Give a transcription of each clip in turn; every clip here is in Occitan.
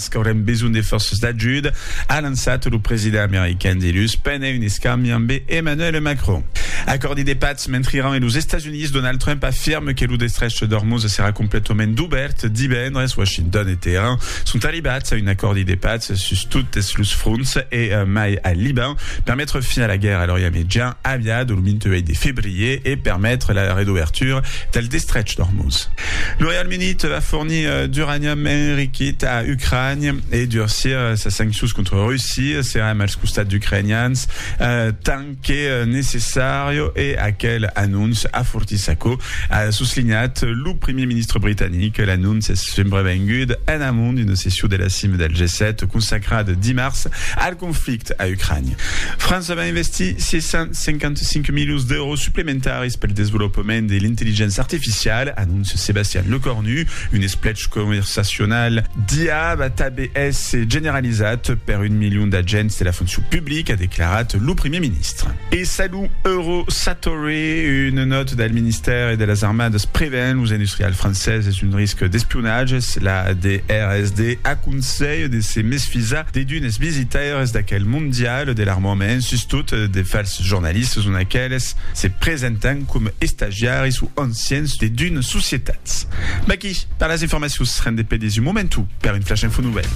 Esc aurem besonh de fòrces d'ajuda, a lançat lo president american dilhus pendent un escambi ambe Emmanuel Macron. Acòrdi de patz mentre Iran e los Estats Units, Donald Trump afirme que lo destrech d'Ormuz serà completament dubèrt divendres. Washington e Teheran sont arribats a un acòrdi de patz sus totes los fronts e mai al Liban per metre fin a la guèrra a l'Orient Mejan aviada lo 28 de febrier e permetre la redobertura del destrech d'Ormuz. Lo Reialme Unit va fornir D'uranium enriquit a Ucrània e durcir sas sanccions contra Russia, serem als costats d'ucrainians tant que necessària e aquel anonç afortís aquò, a soslinhat lo primièr ministre britanic. L'anonç es subrevengud en amont d'una session de la cima del G7 consacrada dimars al conflicte a Ucrània. França va investir 655 milions d'èuros suplementaris pel desvolopament de l'intelligença artificiala, anóncia Sebastian Lecornu. Un esplech conversacional d'IA va tanben èsser generalizat per un milion d'agents de la foncion publica, a declarat lo primièr ministre. E salut Euro Satori, una nòta del ministèri de las Armadas prevèn los industrials franceses d'un risc d'espionatge. La DRSD aconselha de se mesfisar de d'unes visitaires d'aquel mondial de l'armament sustot de falsificar Los jornalistes son aqueles se presentan coma estagiaris o ancians de d'una societat. Vaquí per las informacions, rendez pedes un momentu per un flash info novèl.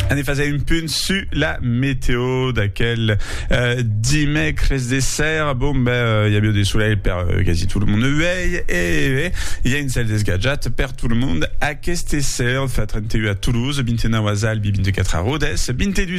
Anem faser un punt su la meteo d'aquel euh, dimècres de sèr. Bon, ben, euh, i avió de solelh per euh, quasi tot le monde uèi e eh, i a un cèl desgatjat per tot le monde. Aqueste sèr fa 31 a Toulouse, 29 a Zalbi, 24 a Rodès, 22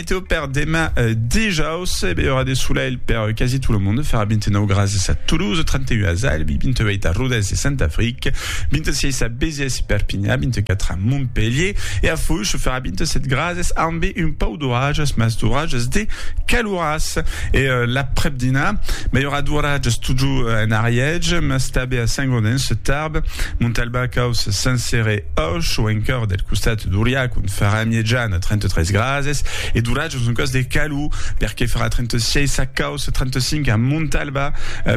Météo per demà dijaus, e bèi aurà de solelh per quasi tot lo monde, farà 29 grases a Toulouse, 31 a Albi, 28 a Rodés e Saint-Afric, 26 a Béziers e Perpinha, 24 a Montpelhier, e a Foish farà 27 grases ambe un pauc d'oratges, mas d'oratges de caloràs. E l'aprèp-dinà, bèi aurà d'oratges totjorn en Ariège, mas tanbe a Saint-Gaudens, Tarbes, Montalbà, Caus, Saint-Céré, Pauc chau encoeur deth costat d'Oriac, on farà miejan a 33 grases, e d'oratge en son còs de calor, perque farà 36 a Cau, 35 a Montalba,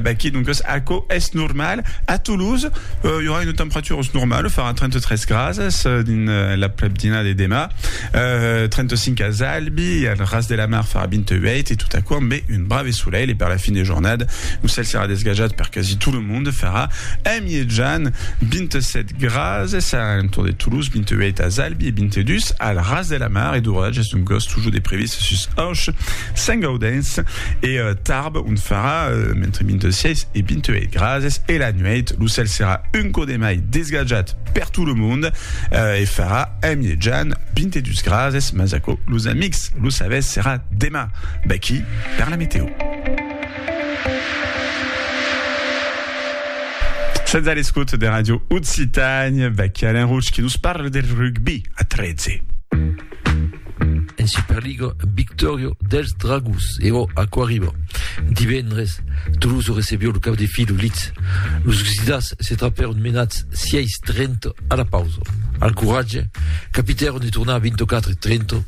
vaquí doncas aquò es normal. A Toulouse, i aurà una temperatura normala, farà 33 grases dins l'aprèpdina de demà, 35 as Albi, e al Ras de la Mar farà 28, e tot aquò ambé un brave solelh, e per la fin de jornada lo cèl serà desgajat per quasi tot lo monde, farà a miejan 27 grases. Grases a un torn de Toulouse 28 a Zalbi e 22 al Ras de la Mar e d'oratges d'ongos toujours de previst sus Auch, Saint-Gaudens e Tarbes ont farà entre 26 e 28 grases e la nuèit lo cèl serà un cò de mai desgatjat per tot lo mond e farà en mièjan 22 grases mas aquò los amics lo sabètz serà demà vaqui per la meteo. Sètz a l'escota de Ràdio Occitània, vèqui Alain Roche que nos parla del rugbi a 13. En Superliga, victòria dels Dragons e ò aquò arriba. Divendres, Toulouse recebió lo cap de fila Leeds. Los Gsidàs se trapèron menats 6-30 a la pausa. Al coratge, capitèron de tornar a 24-30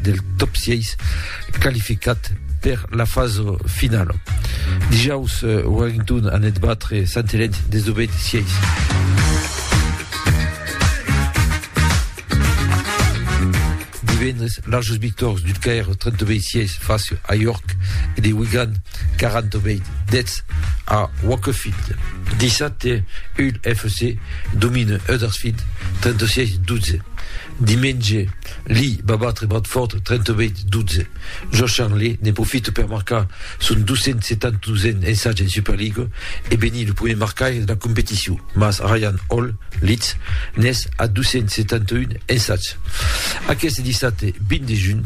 del top 6 qualificat per la fasa finala. Dijaus, Wellington anèt batre Sant Helèn 19-16. divendres larges victòrs du Caire 32-6 face a York e de Wigan 40-10 a Wakefield. Dissabte, Hull FC domine Huddersfield 36-12. Diumenge, Lee va batre Bradford 38 12. Josh Charnley ne profite per marcar son 272n ensatge en Superliga e benir lo primièr marcaire de la competicion, mas Ryan Hall, Leeds, n'es a 271 ensatge. Aqueste dissabte 20 de junh,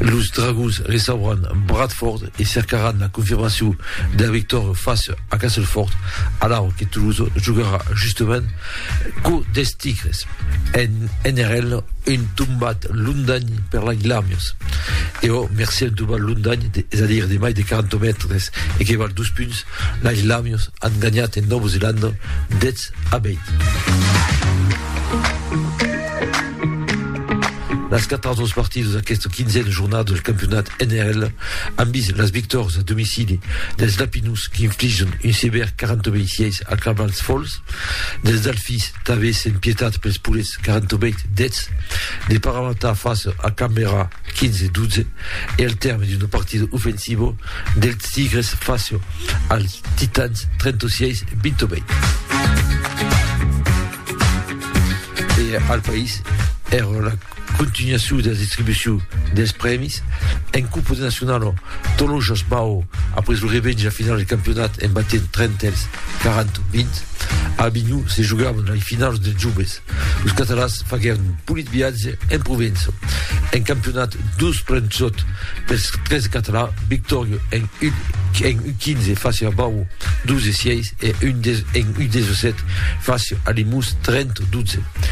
los Dragons recebràn Bradford e cercaràn la confirmacion de la victòria fàcia a Castleford, alara que Toulouse jogarà justament Quo des tigres, en NRL, un tombat londany per la Glamius. E o merci un tombat londany, de, és a dire de mai de 40 mètres e que val dos punts, la Glamius han ganhat en Nova Zelanda 10 a 20. Las quatre autres partides d'aquesta quinzena jornada del campionat NRL han vist les victòries a domicili dels Lapinus qui infligen un sévère 40 26 a Cavalls Falls Dels Delfis, tanben sen pietat pels purets 48 deths, de Paramata face a Canberra 15 12 e al tèrme d'un partido ofensivo dels Tigres face als Titans 36 28. E al país, èra la Continuacion dera distribucion des prèmis en Copa de Nacionalo, Tolojas Bau a pres lo revènge a finals de campionat en batent Trentèls 40-20. A Avinhon se jogavan lei finaus dels joves. Los catalans faguèron un polit viatge en Provença. En campionat dos plens sòt pels 13 catalans, victòria en U15 fàcia a Bau 12-6 e en U17 fàcia a Limós 30-12.